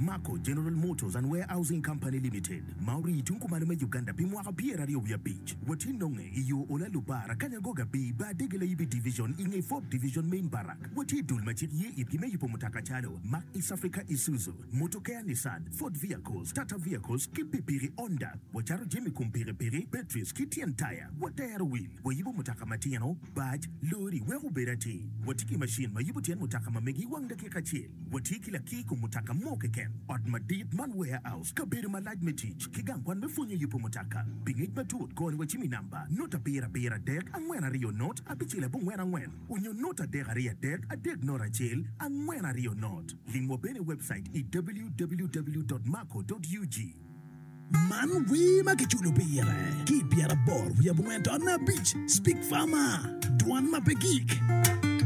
Mako General Motors and Warehousing Company Limited ma orii tung kumalo me Uganda pi mwaka pyeraryo wiye abic watye nonge i yo ola Lubara, Kanyangoga Bii Bar Dege Layibi Division i nge Fort Division Main Barrack. Watye dul ma cik ye itgi me yubo mutoka calo, Mack East Africa Isuzu, Motokea Nissan, Ford Vehicles, Tata Vehicles ki pikipiki Honda. Wacato jami kom pikipiki, batteries ki tyen taya. Watero wil, wayubo mutoka matino, bac, lori wek obed atir. Watye ki macin ma yubo tyen mutoka ma megi wang dakika acel. Watye ki lakir i kom mutoka mo keken, ot madit man, warehouse, kabedo malac me tic, ki gang kwan me pwonyo yubo mutoka. Pi ngec matut, kor ni wacimi namba, nota abiro abiro adek angwen aryo not abicel abongwen angwen, onyo nota adek aryo adek adek not acel angwen aryo not. Limwa bene i webcait i www.maco.ug. Man wer ma kiculo pire ki i pyeraboro wiye abongwen dot me abic, Speak Farmer, Dwan ma pe Gik.